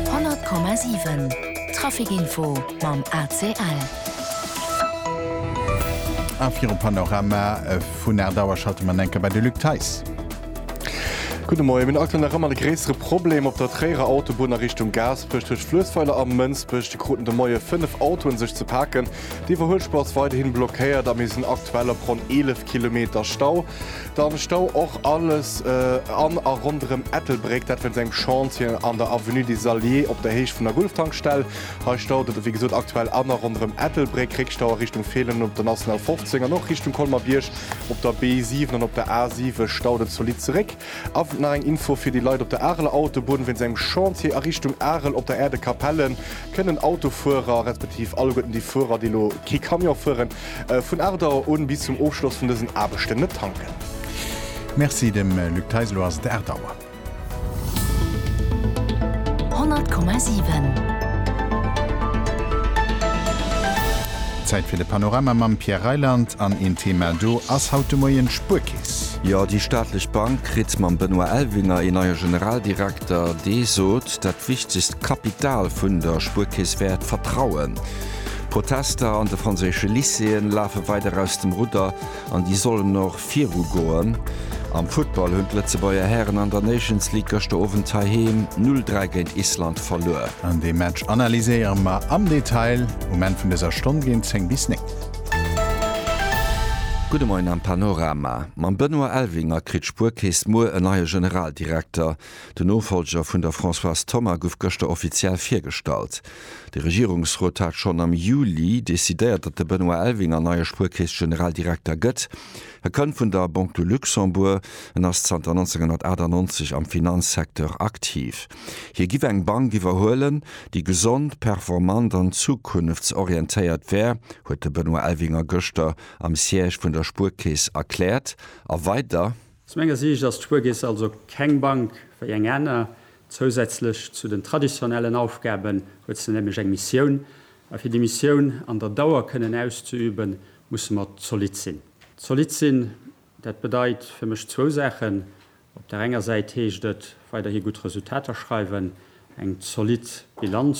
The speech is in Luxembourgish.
100,7 Trafic Info mam ACL. A virum Panorama vun Aardour schalte mer an eng Kéier bei de Luc Theis. Gudde Moien. Mir hunn aktuell nach ëmmer de gréissere Problem op der Tréierer Autobunn a Richtung Gaasperech. Tëscht Fluessweiler a Mënsbech kruten de Moie fënnef Autoen sech ze paken. Déi Iwwerhuelspur ass weiderhin blockéiert a mir sinn aktuell op ronn 11 Kilometer Stau. Da stau och alles an a ronderëm Ettelbréck, dat wéinst engem Chantier an der Avenue des Alliés op der Héicht vun der Gulf-Tankstell. Hei staut et wéi gesot aktuell an a ronderëm Ettelbréck. Réckstau a Richtung Feelen op der National 15 an och Richtung Colmer-Bierg op der B7 an op der A7 staut et zolidd zeréck. A nach eng Info fir déi Leit op der Areler Autobunn, Wéinst engem Chantier a Richtung Arel op der Aire de Capellen kënnen Autofuerer, respektiv alleguerten déi Fuerer, déi elo kee Camion fueren, Vun 8 Auer un bis zum Ofschloss vun dësen Aarbechten net tanken. Merci dem Luc Theis, elo ass et 8 Auer. 100,7. Zäit fir de Panorama mam Pierre Reyland an een Thema do ass haut de Moien d'Spuerkeess. Jo, déi staatlech Bank kritt mam Benoît Elvinger een neie Generaldirekter, dee sot, dat wichtegst Kapital vun der Spuerkeess wär d'Vertrauen. D'Protester an de franséische Lycéeën lafe weider aus dem Rudder an déi sollen och viru goen. Am Football hunn d'Lëtzebuerger Hären an der Nations League gëschter Owend heiheem 0, 3 géint Island verluer. An dee Match analyséiere mer am Detail um Enn vun dëser Stonn géint 10 bis 9. Gudde Moien am Panorama. Mam Benoît Elvinger kritt d'Spuerkeess muer en neie Generaldirekter. Den Nofollger vun der Françoise Thoma gouf gëschter offiziell virgestallt. De Regierungsrot hat schonn am Juli decidéiert, datt de Benoît Elvinger neie Spuerkeess-Generaldirekter gëtt. E kënnt vun der Banque du Luxembourg, en ass zanter 1998 am Finanzsecteur aktiv. Hie giff eng Bank iwwerhuelen, déi gesond, performant an zukunftsorientéiert wär, huet de Benoît Elvinger gëschter am Siège vun der Spuerkeess erkläert. A weider. Zu menger Siicht ass d'Spuerkeess also keng Bank wéi eng aner. Zousätzlech zu den traditionellen Aufgaben huet se nämlech eng Missioun. A fir déi Missioun an der Dauer kënnen auszeüben, musse mer zolidd sinn. Zolidd sinn, dat bedeit fir mech zwou Saachen. Op der enger Säit heescht et, weiderhi gutt Resultater schreiwen, eng zolidd Bilanz.